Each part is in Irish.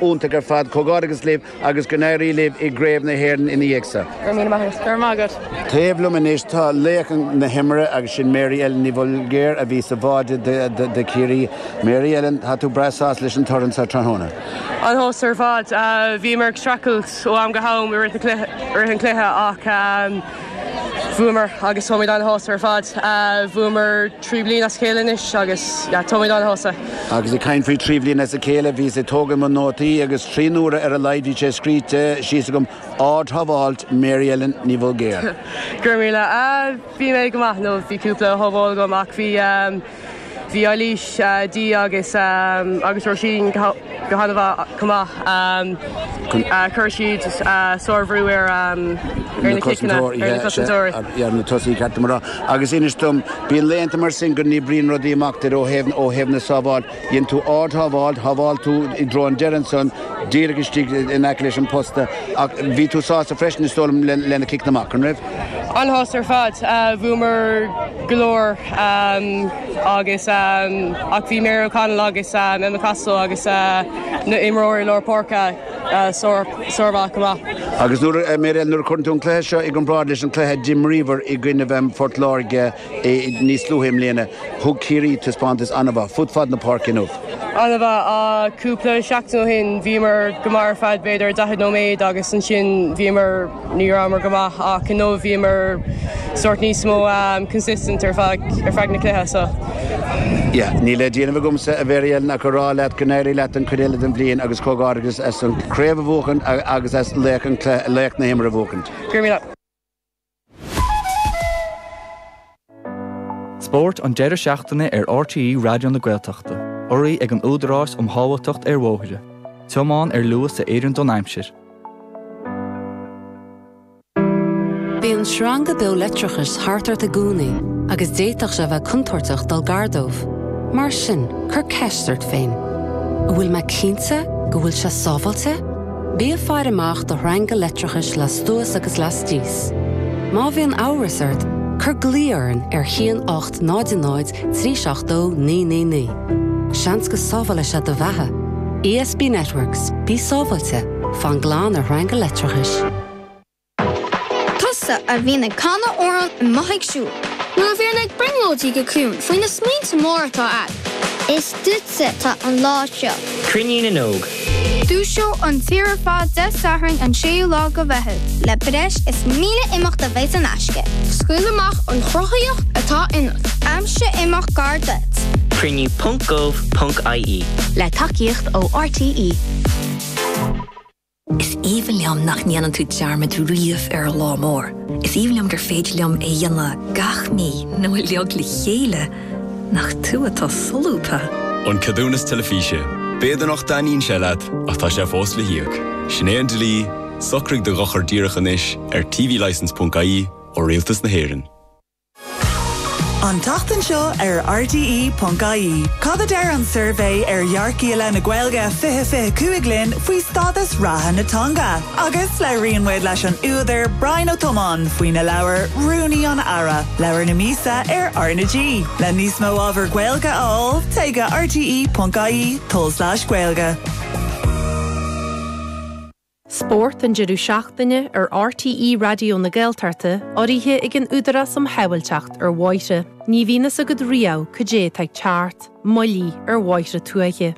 iontach ar fad. Comhghairdeachas libh agus go n-éirí libh i gCraoibh na hÉireann ina dhiaidh sa. Go raibh míle maith agat. Go raibh maith agat. Taobh liom anois tá laoch na himeartha agus sin Mary Ellen Ní Bhulgéir a bhí sa bháire do Chiarraí. Mary Ellen, tá tú breá sásta leis an toradh so tráthnóna. An-shásta ar fad. Bhíomar ag streachailt ó am go ham i rith an chluiche ach. bhuamar agus táimid ana-shásta ar fad. Bhuamar trí bliana as a chéile anois agus táimid ana-shásta. Agus ag caint faoi trí bliana as a chéile, bhíos ag tógaint mo nótaí agus trí n-uaire ar a laghad bhí sé scríte síos agam, ard-shábháil Mary Ellen Ní Bhulgéir. Go raibh míle. Bhí mé go maith nó bhí cúpla sábháil agam ach bhí. Bhí Eilís, Dee agus agus Róisín go hana-mhaith chomh maith. Chuir siad sárbhrú ar na cosantóirí ar na tosaithe ceart, a mhná, agus inis dom, bíonn laethanta mar sin go n-oibríonn rudaí amach duit ó thaobh ó thaobh na sábhála, dhein tú ard-shábháil, shábháil tú i dtreo an deiridh ansan díreach istigh in aice leis an bposta ach bhí tú sásta freisin is dóigh liom leis na ciceanna amach, an raibh? An-shásta ar fad. Bhuamar go leor agus ach bhí Mary O'Connell agus Emma Costello agus na imreoirí lár páirce sármhaith chomh maith. Agus Mary Ellen, nuair a chuireann tú an cluiche seo i gcomparáid leis an cluiche a d'imríobhar i gcoinnibh Phort Láirge, Níos luaithe i mbliana, thug Ciarraí taispeántas ana-mhaith fud fad na páirce inniu. Ana-mhaith. Cúpla seachtain ó shin, bhíomar go maith ar feadh b'fhéidir 40 nóiméad agus ansin bhíomar, ní rabhamar go maith ach inniu bhíomar sórt níos mó consistent ar feadh na cluiche so. Yeah. Níl le déanamh agamsa, a Mhary-Ellen, ach a rá leat go n-éirí leat an chuid eile den bhliain agus comhghairdeachas as an chraobh a bhuachaint agus as laoch na himeartha a bhuachaint. Grmma. Spórt an deireadh seachtaine ar RTÉ Raidió na Gaeltachta. Urraithe ag an Údarás um Shábháilteacht ar Bhóithre. Tiomáin ar luas a oireann don aimsir. Bíonn sreanga beo leictreachais thart ort, i gcónaí agus d'fhéadfadh sé a bheith contúirteach dul gar dóibh. Mar sin, cuir ceist ort féin, An bhfuil mé cinnte go bhfuil sé sábháilte? Bí ag faire amach do shreanga leictreachais lastuas agus lastíos. Má bhíonn amhras ort, cuir glao orainn ar a haon 800 372 999. Seans go sábhálfaidh sé do bheatha. ESB Networks, bí sábháilte, fan glan ar shreanga leictreachais. Tusa a bhíonn ag canadh amhrán i mbothaigh siúil. Nó a bhíonn ag brionglóidí go ciúin faoi na smaointe móra atá agat. Is duitse atá an lá seo. Cruinniú na nÓg. Dúiseoidh an tír ar fad Dé Sathairn an 6ú lá de Mheitheamh. Le breis is 1,000 imeacht a bheidh in aisce. Scaoil amach an chruthaíocht atá ionat. Aimsigh imeacht gar duit. Cruinniú ponc gov ponc ie. Le tacaíocht ó RTÉ. Is aoibhinn liom nach ndéanann tú dearmad riamh ar an lá mór. Is aoibhinn liom gur féidir liom é a dhéanamh gach mí nó uilig le chéile. Nach tú atá solúbtha! An Ceadúnas Teilifíse, B'fhéidir nach dtaitníonn sé leat ach tá sé fós le híoc. Sin é an dlí, socraigh do dhochar díreach anois ar tvlicense.ie ó Rialtas na hÉireann. An tseachtain seo ar RTÉ.ie, cad a deir an suirbhé ar dhearcthaí i leith na Gaeilge 2025 linn faoi stádas reatha na teanga? Agus labhraíonn muid leis an údar Brian Ó Tiomáin faoina leabhar 'Rúnaí an Aire', leabhar na míosa ar R na G. Le níos mó ábhar Gaeilge a fháil, téigh go rte.ie tulslais gaeilge. Spórt an deireadh seachtaine ar RTÉ Raidió na Gaeltachta, urraithe ag an Údarás um Shábháilteacht ar Bhóithre. Ní bhíonn a fhios agat riamh cad é atá ag teacht, moilligh ar bhóithre tuaithe.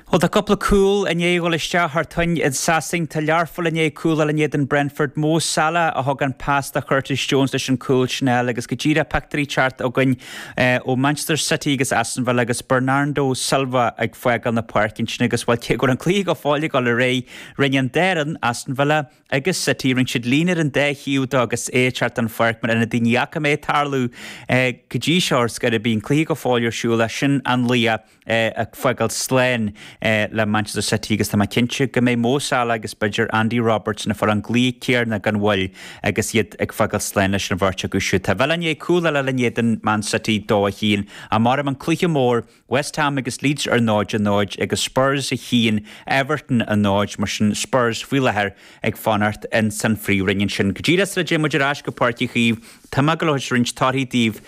Bhuel, tá cúpla cúl i ndiaidh a dhul isteach thar toinn i Sasain. Tá Learpholl i ndiaidh cúl a fháil in éadan Brentford. Mo Salah a thug an pas do Churtis Jones leis an cúl sin a fháil agus go díreach pictiúirí ag teacht chugainn, ó Manchester City agus Aston Villa agus Bernardo Silva ag fágáil na páirce ansin agus, bhuel, cé go raibh an cluiche go fóill ag dul ar aghaidh, rinne an dá fhoireann, Aston Villa agus City, rinne siad líne ar an dá thaobh dó agus é ag teacht den pháirc mar a rinne daoine ní fhaca mé ag tarlú é go dtí seo ar scor ar bith, an cluiche go fóill ar siúl, sin an laoch. ag fágáil sláin le Manchester City agus tá mé cinnte go mbeidh Mo Salah agus b'fhéidir Andy Robertson ag fáil an glaoch céanna gan mhoill agus iad ag fágáil sláin leis an bheirt acu siúd. Tá Villa i ndiaidh cúl eile a fháil in éadan Man City, dó a chionn. Á mairfidh an cluiche mór, West Ham agus Leeds ar 0-0 agus Spurs a chionn, Everton a 0, mar sin Spurs faoi láthair ag fanacht in san phríomhroinn ansin. Go díreach sula dtéann muid ar ais go Páirc Uí Chaoimh tá mé ag dul a thabhairt roinnt torthaí daoibh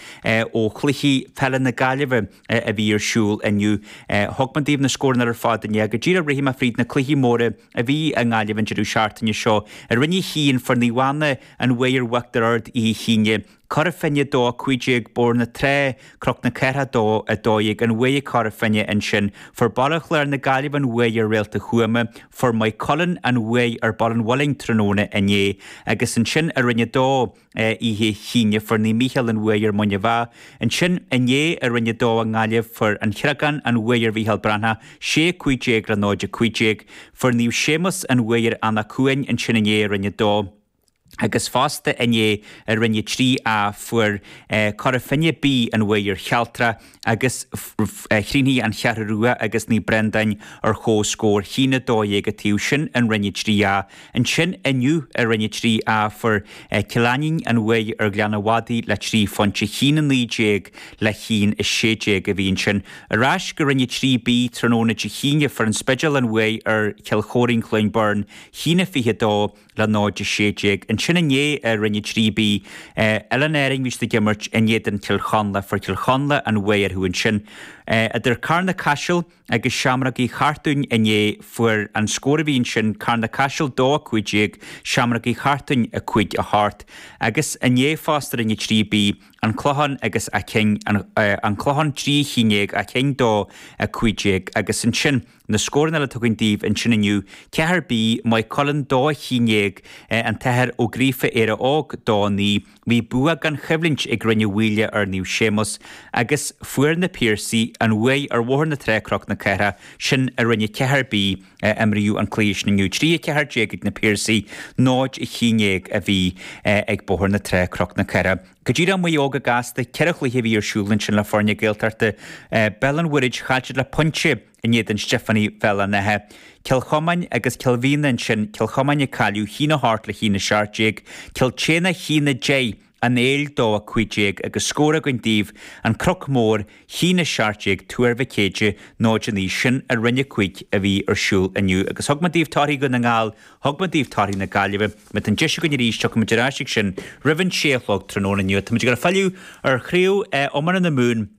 ó chluichí peile na Gaillimhe. a bhí ar siúl inniu. Thug mé daoibh na scóranna ar fad inné. Go díreach rithfidh mé fríd na cluichí móra a bhí i nGaillimh an deireadh seachtaine seo. I Roinn 1, fuair Naomh Anna an bhuaidh ar Uachtar Ard oíche Aoine, Cora Finne 2-15 Bóthar na Trá, Cnoc na Cathrach 2-12 an bhuaidh ag Cora Finne ansin, fuair Baile Chláir na Gaillimhe an bhuaidh ar Réalta Thuama, fuair Maigh Cuilinn an bhuaidh ar Baile an Mhuilinn tráthnóna inné agus ansin i Roinn 2, Oíche Aoine fuair Naomh Mícheál an bhuaidh ar Muine Mheá. Ansin inné i Roinn 2 i nGaillimh, fuair An Creagán an bhuaidh ar Mhícheál Breathnach, 6 15 le 0 15. Fuair Naomh Séamus an bhuaidh ar Anach Cuain ansin inné i Roinn 2. Agus fosta inné i Roinn 3A fuair Cora Finne B an bhuaidh ar Chealtrach. agus chríochnaigh An Cheathrú Rua agus Naomh Brendáin ar chomhscór 1 12 an taobh sin i Roinn 3A. Ansin inniu i Roinn 3A fuair Cill Ainnín an bhuaidh ar Ghleann an Mhadaidh le trí phointe 1 19 le 1 16 a bhí ansin. Ar ais go Roinn 3B tráthnóna Dé hAoine fuair An Spidéal an bhuaidh ar Chill Chóirín-Cluain Bheirn 1 22 le 0-16. Ansin inné i Roinn 3B, Oileáin Árann bhí siad ag imirt in éadan Chill Chonla, fuair Cill Chonla an bhuaidh orthu ansin. Idir Carna Caiseal agus Seamrógaí Chartúin inné fuair an scór a bhí ansin Carna Caiseal 2 15, Seamrógaí Chartúin 5 8. Agus inné fosta Roinn 3B, An Clochán agus Áth Cinn, An Clochán 3 11, Áth Cinn 2 15. Agus ansin. Na scóranna eile atá againn daoibh ansin inniu, 4B, Maigh Cuilinn 2 11, An tAthair Ó Gríofa, Éire Óg 2 9. Bhí bua gan choimhlint ag Rinn Mhaoile ar Naomh Séamus agus fuair na Piarsaigh an bhuaidh ar Bhóthar na Trá Cnoc na Cathrach, sin i Roinn 4B. Imríodh an cluiche sin inniu 3 14 ag na Piarsaigh, 0 11 a bhí ag Bóthar na Trá Cnoc na Cathrach. Go dtí Maigh Eo go gasta, ceithre chluiche a bhí ar siúl ansin le foirne Gaeltachta, Béal an Mhuirthid chaill siad le pointe in éadan Stiofánaigh Bhéal an Átha, Cill Chomáin agus Cill Mhíona ansin, Cill Chomáin ag cailleadh 1 8 le 1 17, Cill tSéadhna 1 10, An Éill 2 15 agus scór againn daoibh, An Cnoc Mór, 1 17, Tuar Mhic Éadaigh 0 9, sin i Roinn 5 a bhí ar siúl inniu agus thug mé daoibh torthaí Dhún na nGall, thug mé daoibh torthaí na Gaillimhe, má tá an deis againn arís tiocfaimid ar ais ag sin roimh an sé a chlog tráthnóna inniu. Táimid ag filleadh ar chraobh iomána na Mumhan.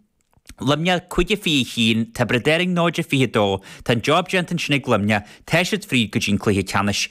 Luimneach, 5-21, Tiobraid Árann 0-22, tá an job déanta ansin ag Luimneach, tá siad fríd go dtí an cluiche ceannais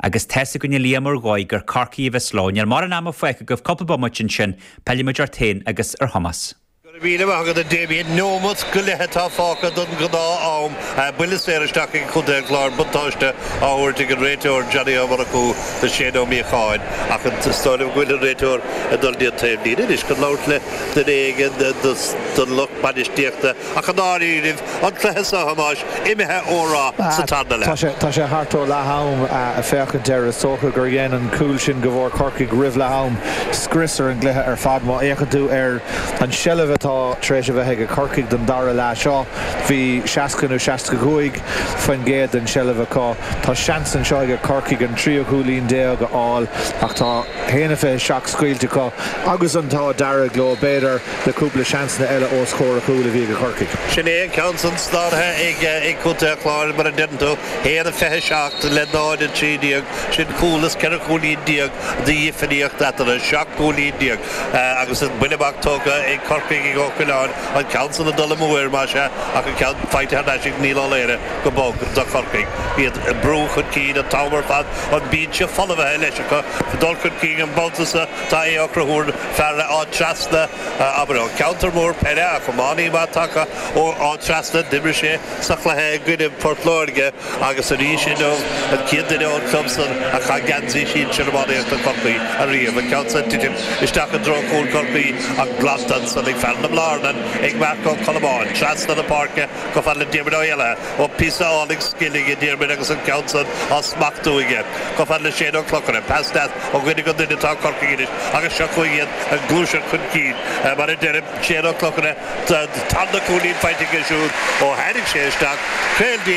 agus tá's againn a Liam ar ndóigh gur Corcaigh a bheas leo. Níl mórán ama fágtha agaibh, cúpla bomaite ansin, pillfimid ort féin agus ar Thomás. Go raibh míle maith agat a Damien. Neomat go leith atá fágtha don ghnáth am ae buille saor isteach ag Contae an Chláir buntáiste á thabhairt ag an réiteoir Johnny Ó Murchú do Shane Ó Míocháin ach is dóigh liom go bhfuil an réiteoir ag dul dtí an taobhlíne anois chun labhairt le duine éigin den lucht bainistíochta ach i ndáiríre an cluiche seo a Thomáis imithe ó rath sa tarna leath. Tá sé thart ó leath-am ag féachaint air. Is dócha gur dhein an cúl sin go bhfuair Corcaigh roimh leath-am scrios ar an gcluiche ar fad. Má fhéachann tú ar an seilbh atá tar éis a bheith ag Corcaigh don dara leath seo, bhí 60 nó 65 faoin gcéad den tseilbh acu. Tá seans anseo ag Corcaigh an tríú cúilín déag a fháil ach tá haon a fiche seacht scaoilte acu agus an t-ádh dearg leo, b'fhéidir. le cúpla seansanna eile os comhair an chúil a bhí ag Corcaigh. Sin é an ceann san slánaithe ag Contae an Chláir mar a deireann tú, 1 a 27 le 0 a 13. Sin cúl is ceithre chúilín déag de dhifríocht eatarthu, seacht gcúilín déag agus an buille amach tógtha ag Corcaigh ag Ó Coileáin, an ceann san ag dul amú air más ea ach an ceann faighte thar n-ais ag Niall Ó Laoire go bog do Chorcaigh. Iad ag brú chun cinn an t-am ar fad, an bínse folmhaithe leis acu, dul chun cinn an babhta so, tá Aodh Ó Conchúir, fear Áth Trasna, abair, ó cheantar mór peile, ach iománaí maith tagtha ó Áth Trasna, d'imir sé sa chluiche i gcoinne Port Láirge agus arís inniu an chéad duine ón club san a chaith geansaí sinsir iománaíochta Chorcaí ariamh, an ceann san ag titim isteach i dtreo chúl Chorcaí ach glanta ansan ag fear na Blarnan, ag Marc Ó Colmáin, trasna na páirce. Chomh fada le Diarmaid Ó hÉalaithe, ó píosa álainn scile ag Diarmaid agus an ceann san á smachtú aige. Chomh fada le Séan Mac Clochaire, pass deas ó dhuine go duine atá Corcaigh anois agus seo chugainn iad ag gluaiseacht chun cinn. Mar a deirim Séan Mac Clochaire, tá an 'tarna cúilín' faighte aige siúd ó tháinig sé isteach. Caol díreach.